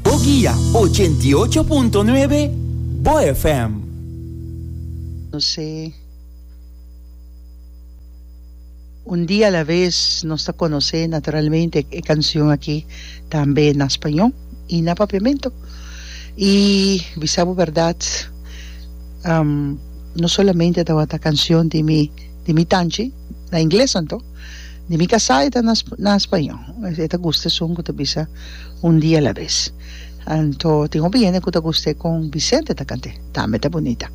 Bo guia ochenta i ocho punto nuebe Bo FM. Nos sé, Un dia a la vez nos ta conoce naturalmente e cancion aki tambe na spañó y na Papiamento y bisa bo berdad no solamente tawata cancion di mi di mi tanchi, na ingles anto di mi casá e ta na na spañó e ta gusta esun cu ta bisa un dia la vez anto tin hopi hende cu ta guste con Vicente ta cant'e tambe ta bunita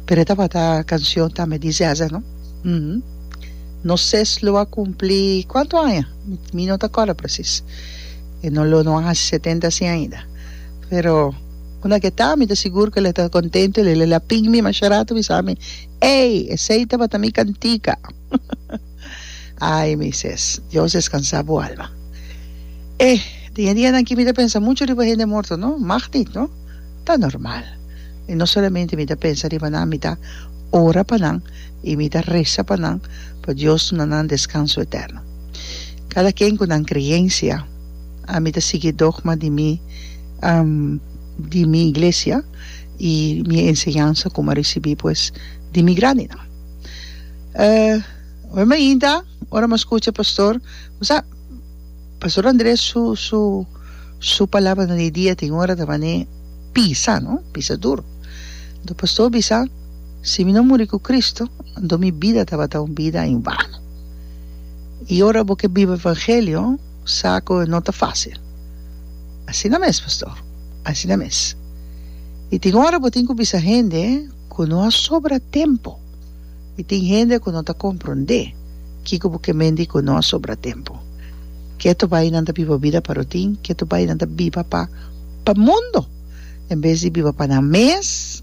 pero e tabata cancion tambe di Zeza no um nos ses lo a cumpli cuanto aña mi no ta acorda precis e no lo no a haci setenta asi ainda pero una ke ta mi ta sigur cu el'e ta contento el'e la pin mi masha rato bisami. Ey, esey tabata mi cantica. Ay, Moises, Dios descansa bo alma. E den e dianan aki mi ta pensa mucho riba hende morto, no? Magniet, no? Ta normal. I no solamente mi ta pensa riba nan, mi ta ora pa nan i mi ta reza pa nan pa Dios duna nan descanso eterno. Cada ken cu nan creencia. Ami ta sigui e dogma di mi di mi iglesia. I mi enseñansa ku mi a risibí pues di mi grandinan. Ora mi a hinta, ora mi a skucha pastor, bo sa, pastor Andres su su su palabranan di dia tin ora ta manera pisa, no, pisa duru. Anto pastor a bisa, si mi no muri ku Kristu, anto mi bida tabata un bida en vano. I ora bo ke biba evangelio. sa ku e no ta fásil. Asina mes, pastor. Asina mes. I tin ora bo tin ku bisa hende ku no a sobra tempu. I tin hende ku no ta komprondé kiko bo ke mende ku no a sobra tempu. Ke tu bai nan ta biba bida pa rutin, ke tu bai nan ta biba pa pa mundu en bes di biba pa nan mes.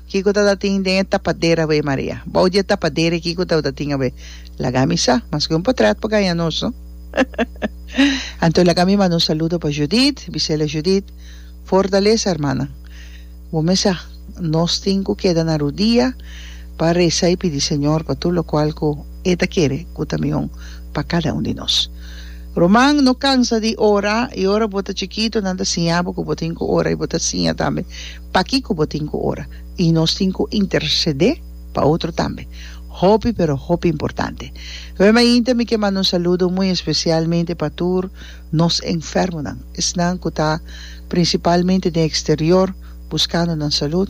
Kiko ta ta tin den e tapadera awe, Maria? Bou di e tapadera e kiko ta ta tin awe? Laga mi sa, mas ke un potret por gaña nos, no? Anto laga mi manda un saludo pa Judith, bisela Judith, fortalesa hermana. Bo mes sa, nos tin ku keda na rudia pa resa i pidi Señor pa tur lokual ku E ta kere ku ta mihon pa kada un di nos. Ruman, no kansa di ora, i ora bo ta chikitu nan ta siña bo ku bo tin ku ora i bo ta siña tambe. Pakico bo tin cu ora? Y nos tin cu intercede pa otro tambe. Hopi pero hopi importante. Oe mainta mi ke manda un saludo muy especialmente pa tur nos enfermonan, esnan cu ta principalmente den exterior buscando nan salud,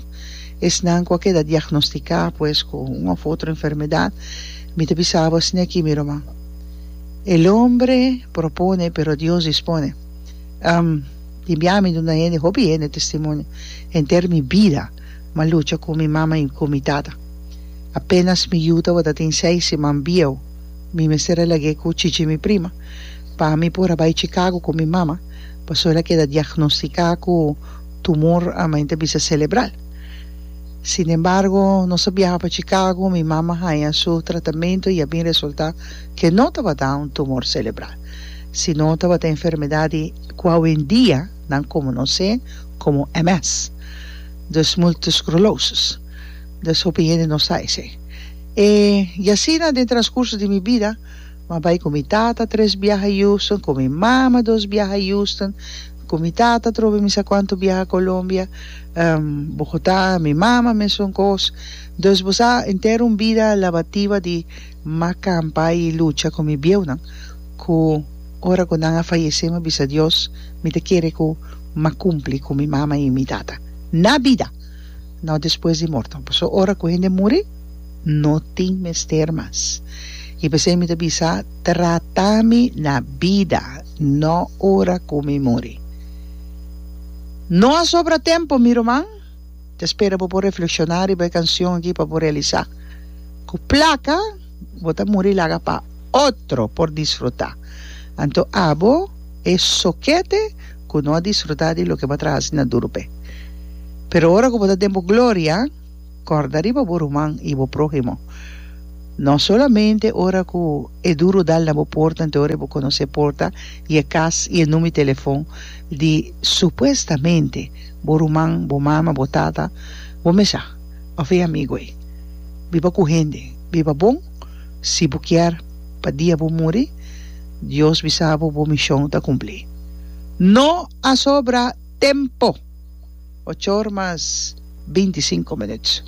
esnan cu a keda diagnostica pues cu un of otro enfermedad. Mi ta bisa bo esne aki mi ruman. El hombre propone pero Dios dispone. Tin bia mi duna hende, hopi hende testimonio henter mi bida, ma lucha ku mi mama i ku mi tata. Apenas mi yu tabata tin seis siman bieu, mi mester a lag'é ku chichi mi prima pa ami por a bai Chicago ku mi mama, pasobra el a keda diagnostiká ku tumor ama enta bisa selebral. Sinembargo, nos a biaha pa Chicago, mi mama haña su tratamentu i a bin resultá ke no tabata un tumor selebral, sino tabata enfermedat di. cu hoendia nan comonoce como MS, dus multiple sclerosis, dus hopi hende no sa esey. E y asina den transcurso di mi bida m'ha bay cu mi tata tres biaha a Houston, cu mi mama dos biaha a Houston, cu mi tata trobe mi sa cuanto biaha Colombia, Bogota, mi mama mesun cos, dus bo sa entero un bida labativa di. M'a kampa i lucha ku mi bieunan ku ora ku nan a fayesé m'a bisa Dios mi ta kere ku m'a kumpli ku mi mama i mi tata na bida, no despues di morto, pasobra ora ku hende muri no tin mester mas. I p'esei mi ta bisa, Trata mi na bida, no ora ku mi muri. No a sobra tempu, mi ruman. Ta spera bo por reflekshoná riba e kanshon akí pa bo realisá ku plaka bo ta muri laga pa otro por disfrutá. Anto abo e sokete ku no a disfrutá di loke bo a traha hasi na duru p'e. Pero ora ku bo ta den bo gloria, kòrda riba bo ruman i bo próhimo. No solamente ora ku e duru dal na bo porta anto ora e bo konosé porta i e kas i e numi telefon di supuestamente bo ruman, bo mama, bo tata, bo mesa of e amigo ei. Biba ku hende. Biba bon. Si bo kier pa dia bo muri Dios bisa bo bo mishon ta kumpli. No a sobra tempo! Ochor mas binti sinku minuut.